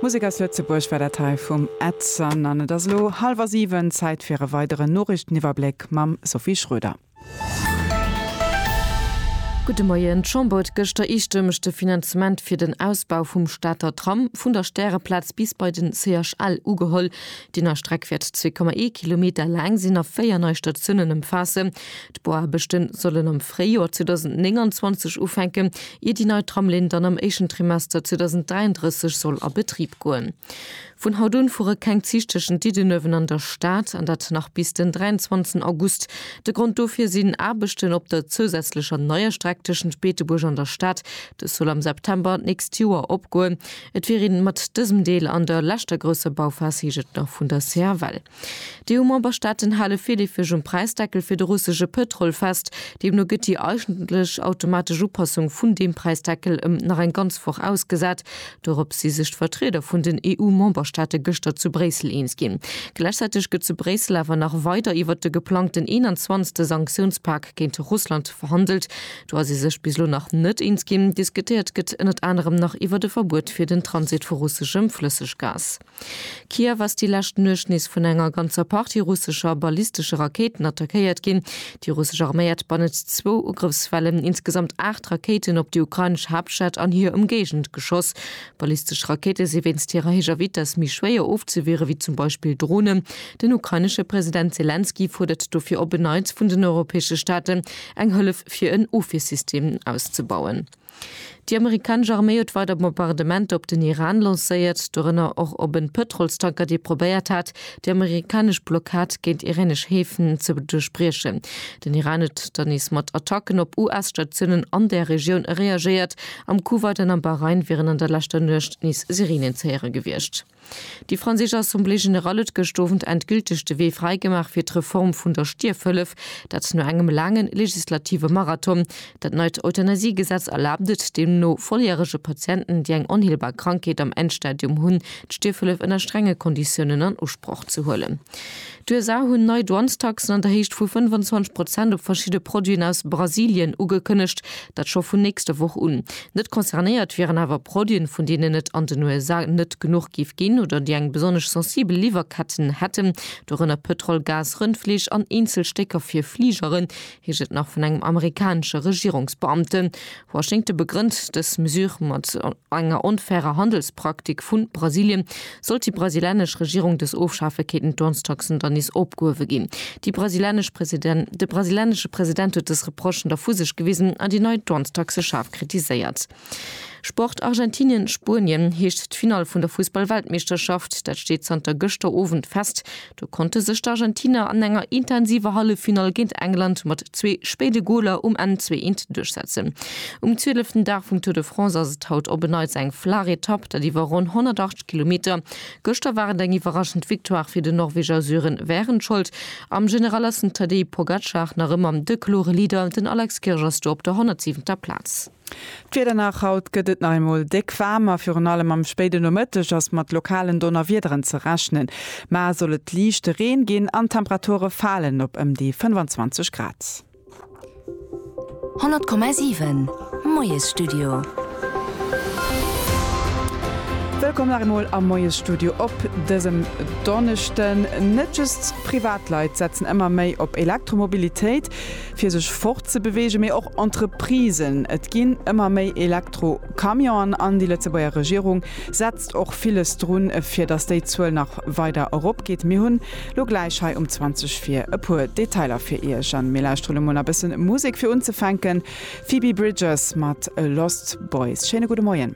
Musek aus Lëtzebuerg war dat hei vum Edson an et ass elo hallwer 7, Zäit fir e weideren Noriichteniwwerbléck mam Sophie Schroeder. Gudde Moien, D'Chamber huet gëschter eestëmmeg de Finanzement fir den Ausbau vum Stater Tram vun der Stäreplaz bis bei de CHL ugeholl. Déi nei Streck wäert 2,1 Kilometer laang sinn a véier nei Statiounen ëmfaassen. D'Bauaarbechten sollen am Fréijoer 2029 ufänken, ier déi nei Tramlinn dann am éischten Trimester 2033 soll a Betrib goen. Vun haut un fuere keng Zich tëschent Diddenuewen an der Stad, an dat nach bis den 23 August. De Grond dofir sinn Aarbechten op der zousätzlecher neier Streck tëschent Beetebuerg an der Stad. Dës soll am September d'nächst Joer opgoen. Et wier ee mat dësem Deel an der leschter grousser Bauphas, heescht et nach vun der CFL. D'EU-Memberstaaten hale virleefeg um Präisdeckel fir de russesche Pëtrol fest. Deemno gëtt déi eigentlech automatesch Upassung vun deem Präisdeckel ëm nach eng ganz Woch ausgesat. Dorop si sech d'Vertrieder vun den EU-Memberstaate gëschter zu Bréissel eens ginn. Gläichzäiteg gëtt zu Bréissel awer nach weider iwwert de geplangten 21. Sanktiounspak géint Russland verhandelt. Do ass ee sech bis elo nach net eens ginn. Diskutéiert gëtt ënnert anerem nach iwwert e Verbuet fir den Transit vu russeschem Flësseggas. Kiew ass déi lescht Nuecht nees vun enger ganzer Partie russescher ballistesche Rakéiten attackéiert ginn. Déi russesch Arméi hat bannent zwou Ugrëffswellen insgesamt aacht Rakéiten op déi ukrainesch Haaptstad an hir Ëmgéigend geschoss. Ballistesch Rakéite si wéinst hirer héijer Vitess méi schwéier ofzewiere wéi zum Beispill Dronen. Den ukrainesche President Selenskyj fuerdert dofir op en Neits vun den europäesche Staaten, eng Hëllef fir en Ofwiersystem auszebauen. Déi amerikanesch Arméi huet weider Bombardementer op den Iran lancéiert, dorënner och op en Pëtrolstanker, dee probéiert hat, déi amerikanesch Blockad géint iranesch Häfen ze duerchbriechen. Den Iran huet dann nees mat Attacken op US-Statiounen an där Regioun reagéiert. Am Kuwait an am Bahrain wieren an der leschter Nuecht nees Sirenen ze héiere gewiescht. Déi franséisch Assemblée générale huet gëscht Owend endgülteg de Wee fräigemaach fir d'Reform vun der Stierfhëllef. Dat no engem laange legislative Marathon. Dat neit Euthanasiegesetz erlaabt et deemno volljärege Patienten, déi eng onheelbar Krankheet am Endstadium hunn, d'Stierfhëllef ënner strenge Konditiounen an Usproch ze huelen. D'USA hunn nei Douanestaxen an der Héicht vu 25 Prozent op verschidde Produiten aus Brasilien ugekënnegt, dat scho vun nächster Woch un. Net concernéiert wieren awer Produiten, vun deenen et an den USA net genuch géif ginn oder déi eng besonnesch sensibel Liwwerketten hätten, dorënner Pëtrol, Gas, Rëndfleesch an eenzel Stécker fir Fligeren, heescht et nach vun engem amerikanesche Regierungsbeamten. Washington begrënnt dës Mesure mat enger onfairer Handelspraktik vu Brasilien. Sollt déi brasilianesch Regierung dës ofschafe, kéinten d'Dwangstaxen dann nees opgehuewe ginn. De brasilianesche President huet dës Reprochen da vu sech gewisen an déi nei Dwangstaxe schaarf kritiséiert. Sport, Argentinien, Spuenien heescht d'Finall vun der Fussball-Weltmeeschterschaft. Dat steet zanter gëschter Owend fest. Do konnte sech d'Argentiner an enger intensiver Halleffinall géint England mat zwee spéide Goler um Enn zwee eent duerchsetzen. Um zwieleften Dag vum Tour de France ass et haut op en Neits eng flaach Etapp, dat iwwer ronn 108 Kilometer. Gëschter war et eng iwwerraschend Victoire fir den Norweger Sören Wehrenscholdt. Am General ass den Tadej Pogacar nach ëmmer de klore Leader, den Alex Kirch ass do op der 107. Plaz. D'Wieder nach, Haut gëtt et nach eemol déck waarm a virun allem am spéiden Nomëtteg ass mat lokalen Donnerwiederen ze rechnen. Mar soll et liichte Reen ginn an d'Temperature falen op ëm déi 25 Grad. 100,7 Moiesstudio. Wëllkomm nach eemol am Moiesstudio op dësem Donneschden. Net just Privatleit setzen ëmmer méi op Elektromobilitéit. fir sech fortzebeweegen, mee och Entreprisen. Et ginn ëmmer méi Elektro-Camionen an déi Lëtzebuerger Regierung setzt och villes drun, fir datt déi Zuel nach weider eropgeet. Mir hunn lo gläich hei um 20 vir e puer Detailer fir Iech an mir lauschtere lo mol a bëssen Musek. Fir unzefänken Phoebe Bridgers mat Lost Boys. Schéine gudde Moien.